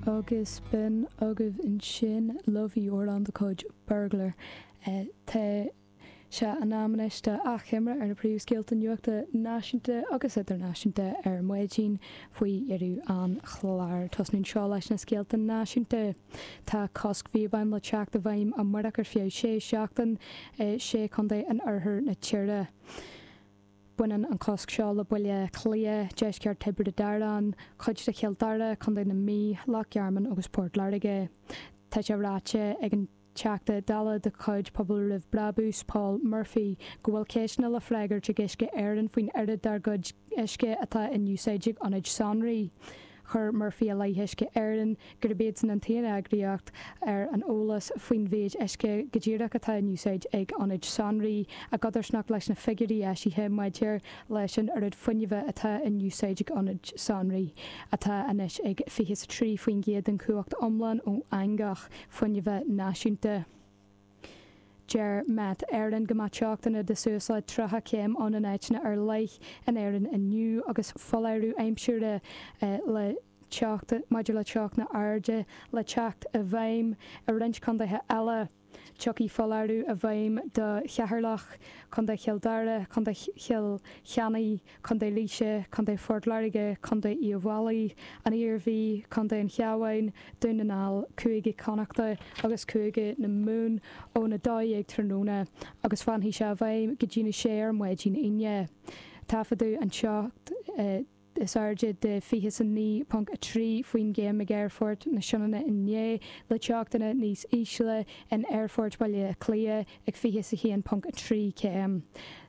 Agus b'in agaibh ansin Love i Ardán de chuid Burglar. Tá sé in am anois d'achoimre ar na príomhscéalta nuachta náisiúnta agus idirnáisiúnta ar maidin faoi dheireadh an chláir. Tosnóimse leis na scéalta náisiúnta. Tá cosc píobáin le teacht i bhfeidhm amáireach ar feadh sé seachtaine i sé chontae in oirthear na tíre. Baineann an cosc seo le Baile Átha Cliath, deisceart Thiobraid Árann, cuid de Chill Dara, Contae na Mí, Loch Garman agus Port Láirge. Tá sé ráite ag an Teachta Dála de chuid Pobal Roimh Brabús, Paul Murphy, go bhfuil ceisteanna le freagairt ag Uisce Éireann faoin oiread dár gcuid uisce atá in úsáid ag ionaid sonraí. Chuir Murphy i leith Uisce Éireann gurb iadsan an t-aon eagraíocht ar an eolas faoin mhéid uisce go díreach atá in úsáid ag ionaid sonraí, i gcodarsnacht leis na figiúirí eisithe maidir leis an oiread fuinnimh atá in úsáid ag ionaid sonraí, atá anois ag 23% den chumhacht iomlán ó eangach fuinnimh náisiúnta. Deir Met Éireann go mbeidh teochtanna de suas le 30 céim ann in áiteanna ar leith in Éirinn inniu agus foláireamh aimsire le teacht maidir le teochtanna arda le teacht i bhfeidhm i roinnt contaetha eile. Tiocfaidh foláireamh i bhfeidhm do Cheatharlach, Contae Chill Dara, Contae Chill Chainnigh, Contae Laoise, Contae Phort Láirge, Contae Uíbh Fhailí, an Iarmhí, Contae an Chabháin, Dún na nGall, Cúige Chonnachta agus Cúige na Mumhan ón 12:00 tráthnóna agus fanfaidh sé i bhfeidhm go dtí a sé ar maidin Aoine. Taifeadadh an teocht is airde de 29.3 faoin gcéim ag Aerfort na Sionainne inné, le teochtanna níos ísle in Aerfort Bhaile Átha Cliath, ag fiche is a haon ponc a trí céim.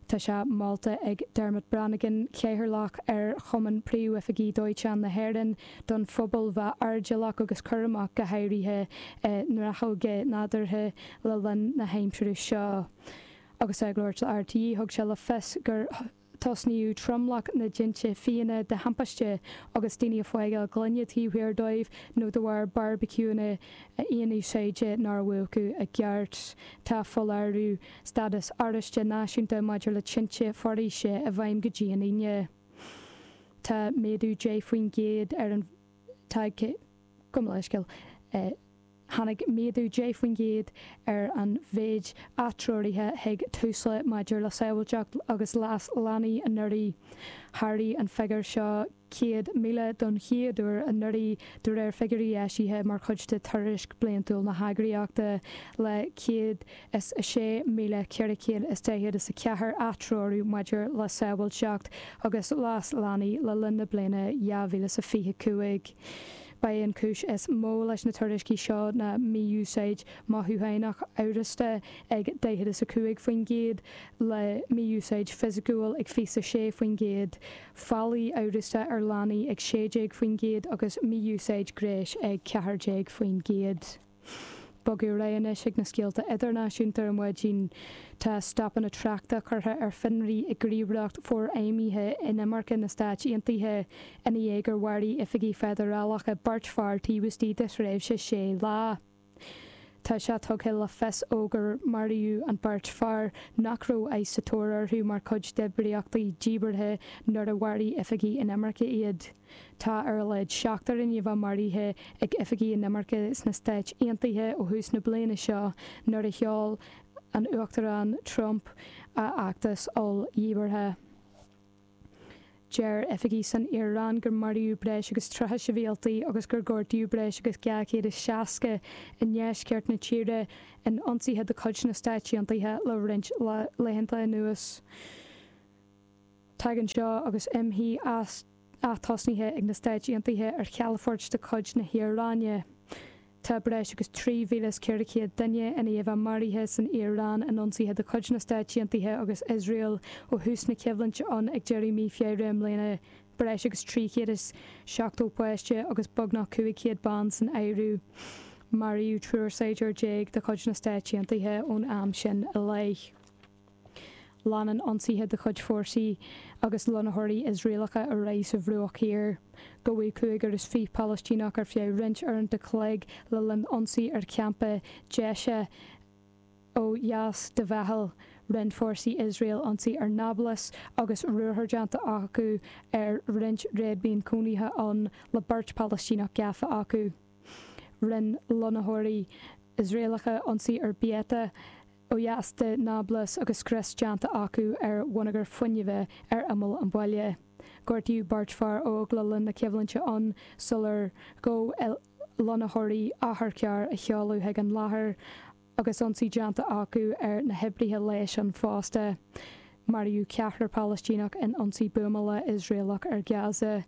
Tá sé molta ag Dermot Brannigan, Cathaoirleach ar Chumann Príomhoifigigh Dóiteáin na hÉireann, don phobal bheith airdeallach agus cúramach go háirithe i ngnáthóga nádúrtha le linn na haimsire seo. Agus é ag labhairt le RTÉ thug sé le fios gur Tosnaíodh tromlach na dtinte fiáine de thimpiste agus daoine ag fágáil gloine taobh thiar dóibh nó de bharr beárbaiciúnna aonúsáide nár múchadh i gceart. Tá foláireamh stádas oráiste náisiúnta maidir le tinte foraoise i bhfeidhm go dtí an Aoine. Tá méadú 10 faoin gcéad ar an. Tháinig méadú 10 faoin gcéad ar an mhéid atreoraithe chuig Tusla maidir le sábháilteacht agus leas leanaí anuraidh. Sháraigh an figiúr seo 100,000 don chéad uair anuraidh, de réir figiúirí eisithe mar chuid de Tuairisc Bliantúil na heagraíochta, le 106,444 atreorú maidir le sábháilteacht agus leas leanaí le linn na bliana 2025. Ba é an chúis is mó leis na tuairiscí seo ná mí-úsáid mothúchánach amhrasta ag daichead is a cúig faoin gcéad, le mí-úsáid fisiciúil ag fiche is a sé faoin gcéad, faillí amhrasta ar leanaí ag sé déag faoin gcéad agus mí-úsáid gnéis ag ceathair déag faoin gcéad. Bogadh ar aghaidh anois ag na scéalta idirnáisiúnta ar maidin. Tá stopanna tráchta curtha ar fionraí ag gníomhaireacht forfheidhmithe inimirce na Stáit Aontaithe ina dhiaidh gur mharaigh oifigigh feidearálacha beirt fear taobh istigh de thréimhse sé lá. Tá sé tugtha le fios ó gur maraíodh an beirt fear nach raibh ICE sa tóir orthu mar chuid d'oibríochtaí díbeartha nuair a mharaigh oifigigh inimirce iad. Tá ar a laghad seachtar i ndiaidh a bheith maraithe ag oifigigh inimirce sna Stáit Aontaithe ó thús na bliana seo nuair a sheol an Uachtarán Trump a fheachtas oll-dhíbeartha. Deir oifigigh san Iaráin gur maraíodh breis agus 30 sibhialtaí agus gur gortaíodh breis agus 260 i ndeisceart na tíre in ionsaithe de chuid na Stáit Aontaithe le roinnt laethanta anuas. Tagann seo agus imshuí ath-tosnaithe ag na Stáit Aontaithe ar chalafoirt de chuid na hIaráine. Tá breis agus 3,400 duine i ndiaidh a bheith maraithe san Iaráin in ionsaithe de chuid na Stáit Aontaithe agus Iosrael ó thús na coimhlinte ann ag deireadh mí Feabhra i mbliana, breis agus 370 páiste agus beagnach 500 bean san áireamh. Maraíodh triúr saighdiúir déag de chuid na Stáit Aontaithe ón am sin i leith. Leanann ionsaithe de chuid fórsaí agus lonnaitheoirí Iosraelacha ar aghaidh sa Bhruach Thiar. Gabhadh cúigear is fiche Palaistíneach ar feadh roinnt uaireanta an chloig le linn ionsaí ar champa Dheisheh ó dheas de Bheithil. Rinne fórsaí Iosrael ionsaí ar Nablus agus ruathar déanta acu ar roinnt réadmhaoin chónaithe ann le beirt Palaistíneach gafa acu. Rinne lonnaitheoirí Iosraelacha ionsaí ar Beita, ó dheas de Nablus agus scrios déanta acu ar bhonneagar fuinnimhe ar imeall an bhaile. Gortaíodh beirt fear óg le linn na coimhlinte ann sular ghabh lonnaitheoirí otharcharr a sheoladh chuig an láthair agus ionsaí déanta acu ar na hoibrithe leighis ann fosta. Maraíodh ceathrar Palaistíneach in ionsaí buamála Iosraelach ar Gaza.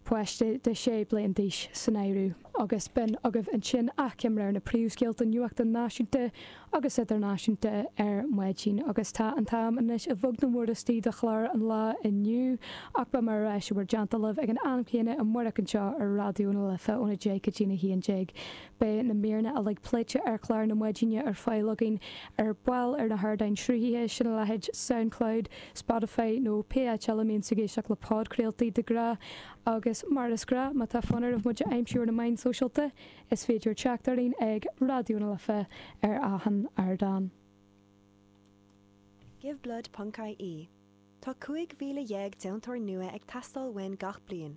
páiste de sé bliana d'aois san áireamh, agus b'in agaibh ansin achoimre ar na príomhscéalta nuachta náisiúnta agus idirnáisiúnta ar maidin, agus tá an t-am anois ag bualadh na mbuairthíní do chlár an lae inniu, ach beidh muid ar ais i mbun dána libh ag an am céanna amárach anseo ar Raidió na Life óna deich go dtí a haon déag. Beidh na míreanna uilig pléite ar chlár na maidine ar fáil againn ar ball ar na hardáin sruthaithe sin a leithéid Soundcloud, Spotify nó pé áit eile a mbíonn tú ag éisteacht le podchraoltaí de ghnáth. Agus mar is gnáth, má tá fonn oraibh muid a aimsiú ar na meáin sóisialta, is féidir teacht orainn ag Raidió na Life ar achan ardán. Give blood ponc ie Tá 15,000 deontóir nua ag teastáil uainn gach bliain.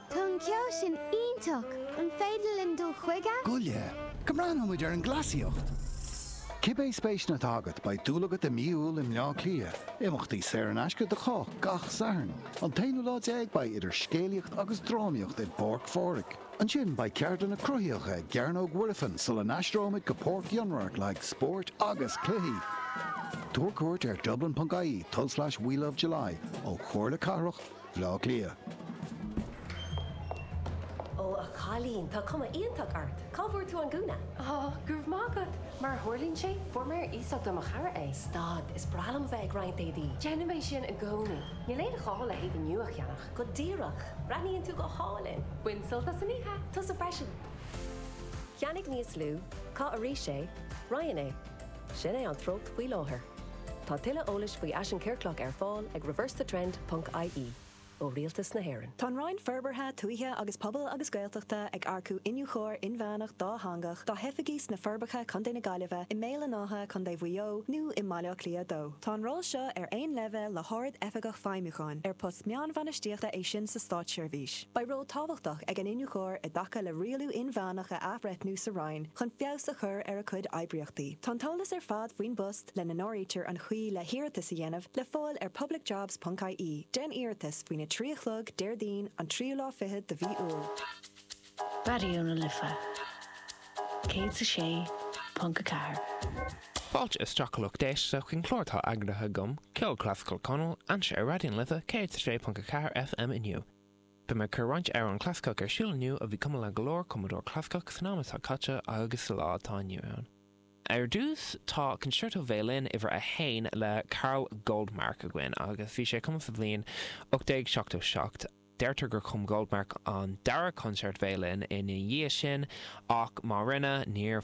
Tá an ceol sin iontach! An féidir linn dul chuige? Goile, go mbreathnóidh muid ar an gcleasaíocht! Cibé spéiseanna atá agat, beidh dúil agat i Mí Iúil i mBleá Cliath. Imeachtaí saor in aisce do chách gach Satharn. An t-aonú lá déag beidh idir scéalaíocht agus drámaíocht i bPáirc Phádraig. Ansin beidh ceardlanna cruthaitheacha i gCearnóg Mhuirfean sula n-aistreoimid go Páirc Fhionnradharc le haghaidh spóirt agus cluichí. Tabhair cuairt ar dublin.ie, tulslais welovejuly ó Chomhairle Cathrach. Bhleá Cliath. Ó a chailín, tá cuma iontach ort. Cá bhfuair tú an gúna? Ó, go raibh maith agat. Mar a tharlaíonn sé, fuair mé ar iasacht é ó mo chara. Stad, is breá liom a bheith ag roinnt éadaí. Déanaim é sin i gcónaí. Níl aon ghá le héadaí nua a cheannach. Go díreach. Breathnaíonn tú go hálainn. Bain sult as an oíche. Tusa freisin. Ceannaigh níos lú. Caith arís é. Roinn é. Sin é an treocht faoi láthair. Tá tuilleadh eolais faoi fhaisean ciorclach ar fáil ag reversethetrend ponc ie. ó Rialtas na hÉireann. Tá an Roinn Forbartha, Tuaithe agus Pobail agus Gaeltachta ag earcú iniúchóir inmheánach dátheangach dá hoifigí sna Forbacha, Co na Gaillimhe, i mBéal an Átha, Co Mhaigh Eo, nó i mBaile Átha Cliath 2. Tá an ról seo ar aon leibhéal le hArd-Oifigeach Feidhmiúcháin, ar post meánbhainistíochta é sin sa státseirbhís. Beidh ról tábhachtach ag an iniúchóir i dtaca le rialú inmheánach a athbhreithniú sa Roinn chun feabhas a chur ar a cuid oibríochtaí. Tá an t-eolas ar fad faoin bpost, lena n-áirítear an chaoi le hiarratas a dhéanamh, le fáil ar publicjobs ponc ie, Déan Iarratas, faoina 3 a chlog, Déardaoin, an tríú lá fichead de mhí Iúil. Raidió na Life 106.4. Fáilte isteach a lucht éisteachta chuig an chlár atá eagraithe agam, Ceol Clasaiceach Conall, anseo ar Raidió na Life 106.4 FM inniu. Beidh mé ag cur roinnt amhrán clasaiceach ar siúl inniu a bhí cumadh le go leor cumadóir clasaiceach san am atá caite agus sa lá atá inniu ann. Ar dtús, tá Concerto Veidhlín Uimhir 1 le Karl Goldmark againn, agus bhí sé cumadh sa bhliain 1877. Deirtear gur chum Goldmark an dara Concerto Veidhlín ina dhiaidh sin, ach má rinne, níor.